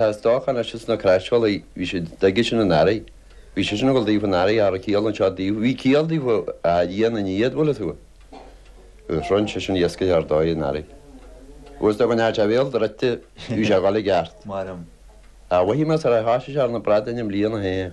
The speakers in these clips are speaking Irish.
Tá is dócha, anois is na craisbholaí, bhí siad, i dtigh sin an Fhearraigh, bhí sé sin ag dul daofa an Earraigh, ara ciall anseo díobh, bhí ciall díobh a Dhia na ndiaidh, bhfuil a fhios agat. Agus shroinn sé sin iascaigh ar dóigh an Earraigh. Agus dá mbainfeadh sé a bhéal druidte, bhí sé ag dhul i gceart. Ach mhothaigh mé char thoisigh sé ar na bradáin i mbliana féin.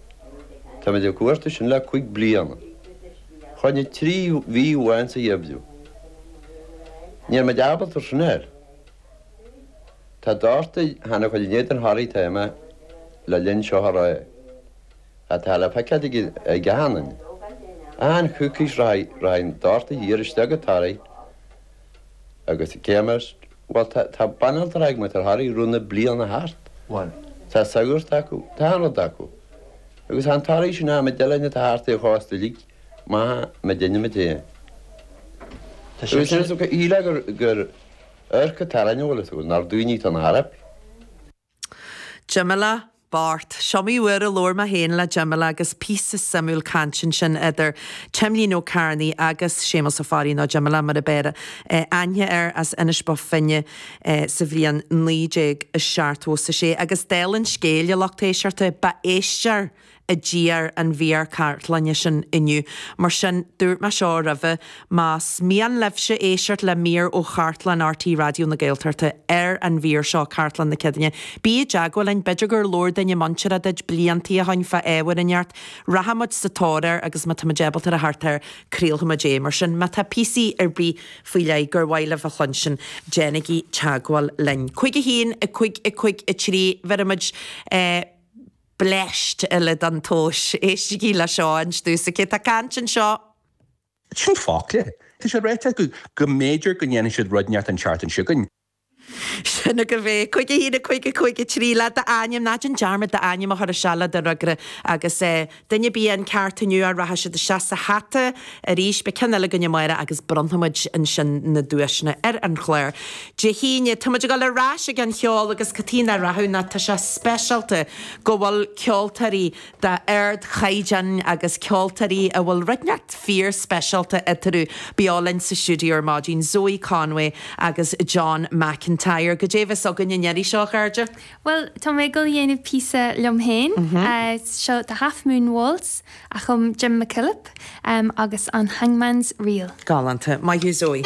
Táimid ag cuartú sin le cúig bliana. Chaill muid trí mhí amháin sa gheimhreadh. Níl muid ábalta sin ar. Tá dórtadh cheana chuil in éadan Thoraí tá mé le linn seo a ré. Atá le feiceáil ag an gceathanna. An-choicís rachaidh dórtadh thiar isteach go Toraigh. Agus cé mar, bhuel, tá banaltra ag muintir Thoraí, rud na bliana thart. Bhuel, tá sagart acu, tá banaltra acu. Agus tá an Toraí sin ann, muid de líne atá thart air chomh astu uilig, maith mar deineamaid é. Agus sin, shíl mé gur, gur, iarracht ar an rud a bhfuil acu, nár daoine tá na hEorpa. Jimí Labhairt, is iomaí uair a labhair mé féin le Jimí Labhairt agus píosa suimiúil cainte ansin idir Timlín Ó Cearnaí agus Séamus Ó Fearraigh, nó Jimí Labhairt mar ab fhearr aithne air, as Inis Bó Finne sa bhliain 1976. Agus duine dár lucht éisteachta, ba éistear! a d'iarr an mhír chartlainne sin inniu. Mar sin, dúirt mé seo roimhe, más mian libhse éisteacht le mír ó chartlann RTÉ Raidió na Gaeltachta ar an mhír seo, Cartlann na Céadaoine, bí i dteagmháil linn. B'fhéidir gur labhair duine muinteartha duit blianta ó shin fá ábhar inteacht. Rachaimid sa tóir air agus má táimid ábalta a theacht air, craolfaimid é. Mar sin, má tá píosa ar bith faoi leith gur mhaith libh a chluinstin, déanaigí teagmháil linn. 51 5 5 3 Bheirimid. bleaist eile don tomhas. Éistigí le seo anois. Tusa, cé atá ag caint anseo. Sin focla. Tá sé ráite acu go mb'fhéidir go ndéanfaidh siad rud inteacht anseo againn. Sin agaibh é. Cúig a haon, a cúig, a cúig a trí le d'ainm. Ná déan dearmad d'ainm a chur isteach le do fhreagra. Agus duine ar bith atá ceart inniu rachaidh siad isteach sa hata arís. Beidh ceann eile againn amárach agus bronnfaimid ansin na duaiseanna ar an chlár. Dé hAoine, tá muid ag dul ar ais chuig an cheol agus caithfidh mé a rá go bhfuil, tá sé speisialta go bhfuil ceoltóirí d'ardchaighdeán agus ceoltóirí a bhfuil draíocht fíor speisialta eatarthu beo linn sa stiúideo ar maidin, Zoe Conway agus John McIntyre. Goidé a bheas againn an iarraidh seo, a chairde? Bhuel, tá mé ag dul a dhéanamh píosa liom féin. Seo The Half Moon Waltz a chum Jim McKillop agus an Hangman's Reel. Galánta. Maith thú Zoe.